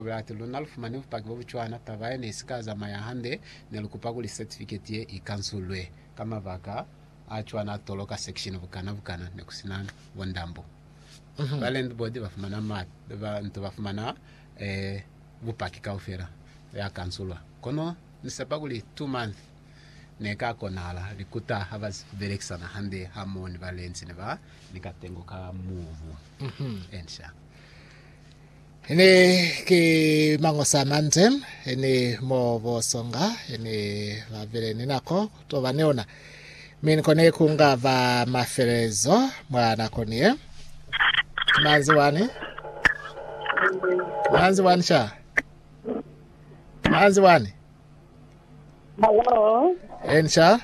Lati, Luna lufumani bupaki bobucwana, taba ye ne isika zamaya hande, nelukupa kuli certificate ye ikansulwe. Ka mabaka acwana atoloka section bukana bukana, nekusina bo ndambo ba landboard bafumana ba nto bafumana eh, bupaki kaufela ya kansulwa. Kono nisepa kuli two month neka konahala, likuta haba belekisana hande hamoho ni ba lentsi ne ba ni katengo ka mubu. Ensha. Ene ki mangosa mande ene mo bo songa ene ba bele ni nako to ba ni ona, mi ni kone ku nga ba mafelelezo mwa nako ni ye. Manzi wani, manzi wani cha, manzi wani. Hello. Eni cha.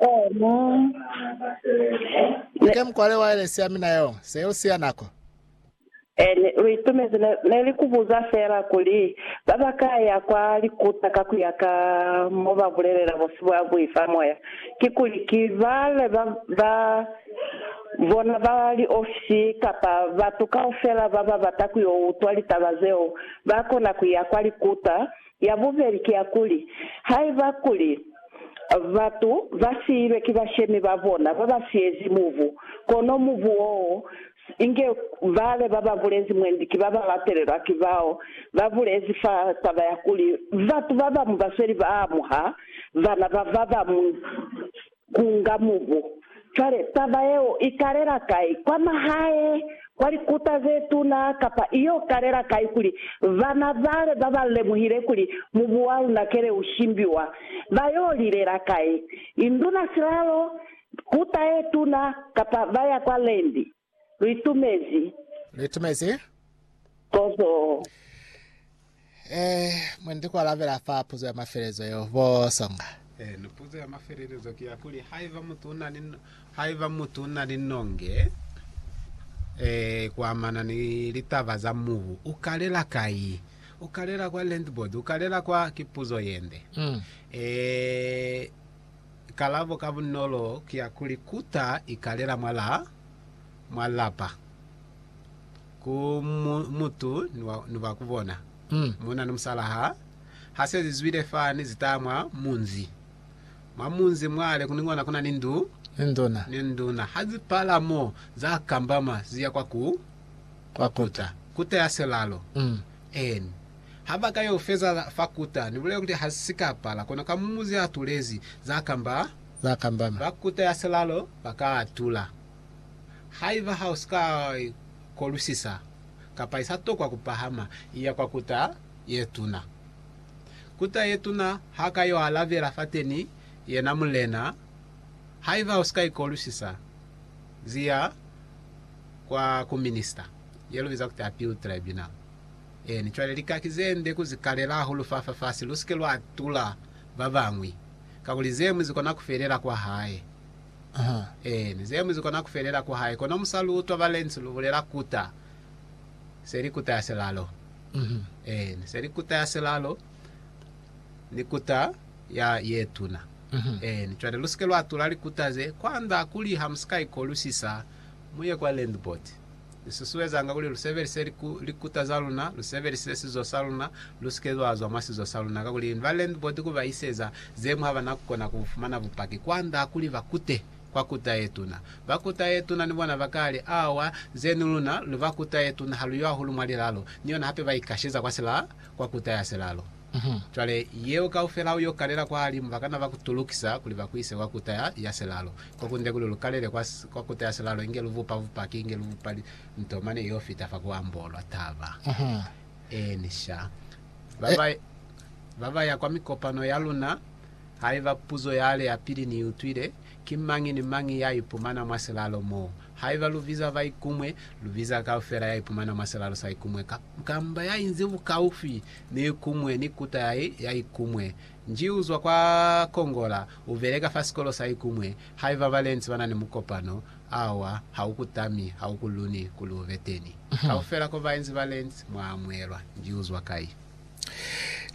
Eni. Ike mkwale wa ile siya mina yo, se yo siya nako. N lu itumezi ne, ne li ku buza fela kuli, Ba ba ka ya kwa likuta ka ku ya ka mo ba bulelela busi bwa bui fa moya, kikuli ki bale ba, ba bona ba liofisi kapa batu kaufela ba ba bata ku yo utwa litaba zeo ba kona ku ya kwa likuta? Ya bubeli ki ya kuli, Haiba kuli batu ba siilwe ki bashemi ba bona ba ba siyezi mubu, kono mubu woo Inge bale baba bulezi mwendi ki baba latelelwa ki bao ba bulezi fa taba ya kuli batu babamu basweli ba amuha bana ba babamu ku nga mubu. Cwale, taba yeo i kalela kai? Kwa mahae, kwa likuta ze tuna, kapa i yo kalela kai kuli bana bale baba lemuhile kuli mubu wa luna kele u shimbiwa, ba yo lilela kai? Induna silalo Kuta ye tuna, kapa ba ya kwa Lendi. Lu itumezi. Lu itumezi. Kozo. E, mwe ndi ku alabela fa puzo ya mafelelezo yeo, bo Songa. E, ni puzo ya mafelelezo ki ya kuli, haiba mutu una ni, haiba mutu una ni nonge, e, ku amana ni litaba za mubu, u kalela kai? U kalela kwa Land Board? U kalela kwa, ki puzo yende. E, Kalabo ka bunolo ki ya kuli kuta i kalela mwa lapa ku mutu ni ba ku bona. Munna ni musala ha se zi zwile fani, zi taha mwa munzi. Mwa munzi mwale ni kona ku na ni ndu ni nduna. Ha zi pala mo, za kambama, zi ya kwa kuta. Kuta ya silalo. Eeni. Ha ba ka yo feza fa kuta, ni bulela kuli ha si ka pala, kono ka mumu ze atulezi za kamba, ba kuta ya silalo ba ka atula. Haiba ha u si ka i kolusisa, kapa i sa tokwa ku pahama i ya kwa kuta ye tuna, kuta ye tuna ha ka yo alabela fateni, yena mulena, haiba u si ka i kolusisa, ziya kwa ku minista ye lu biza kuti appeal tribunal. Eeni, cwale lika ki ze nde ku zi kalela hahulu fa fafasi, lu si ke lwa tula ba bañwi, kakuli ze ñwi zi kona ku felela kwa hae. Uh-huh. Eeni, ze ñwi zi kona ku felela kwa hae. Kono mu sa lu utwa ba Lentz lu bulela kuta, se li kuta ya silalo. Uh-huh. Eeni, se li kuta ya silalo, ni kuta ya ye tuna. Uh-huh. Eeni, cwale lu si ke lwa tula likuta ze, kwand'a kuli ha mu si ka ikolusisa, mu ye kwa Landport. Lu susuezanga kuli lu sebelise likuta za luna, lu sebelise sizo sa luna, lu si ke lwa zwa mwa sizo sa luna, kakuli ni ba landlord ku ba iseza ze mu ha ba na ku kona ku fumana bupaki kwand'a kuli ba kute kwa kuta ye tuna. Ba kuta ye tuna ni bona ba ka li, Awa, ze ni luna, lu ba kuta ye tuna, ha lu yo hahulu mwa lilalo. Ni yona hape ba ikasheza kwa silaa, kwa kuta ya silalo. Cwale, yeo kaufela u yo kalela kwahalimu, ba kana ba ku tulukisa kuli ba ku ise kwa Kuta ya, ya Silalo, ko kunde kuli lu kalele kwa, kwa Kuta ya Silalo, inge lu bupa bupaki, inge lu bupa li, nto mane yo fita fa ku ambolwa taba. Eeni, sha. Ba ba, ba ba ya kwa mikopano ya luna, haiba puzo yale ya pili ni i utwile, ki mañi ni mañi ya ipumana mwa silalo mo. Haiba lu biza ba ikumwe, lu biza kaufela ya ipumana mwa silalo sa ikumwe, ka, kamba ya inzi bukaufi Ni kumwe ni kuta ya, ya ikumwe. Nji uzwa kwa Kongola, ubeleka fa sikolo sa ikumwe. Haiba balenzi bana ni mukopano, awa, ha u ku tami, ha u ku luni kuli ube teni. Kaufela ko bainzi balenzi, mwa amuelwa. Nji uzwa kai?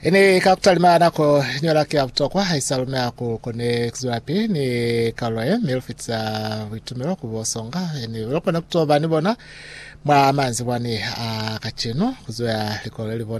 Ini ka kutalima nako iñola ki ya butokwa, haisa lumi ha ku koni kuzwelapili ni kalulo ye, mi lufitisa buitumelo ku bo songa. Ini lukona kutoba ni bona mwa manzibwani a kacenu, kuzweha likolo lelibona.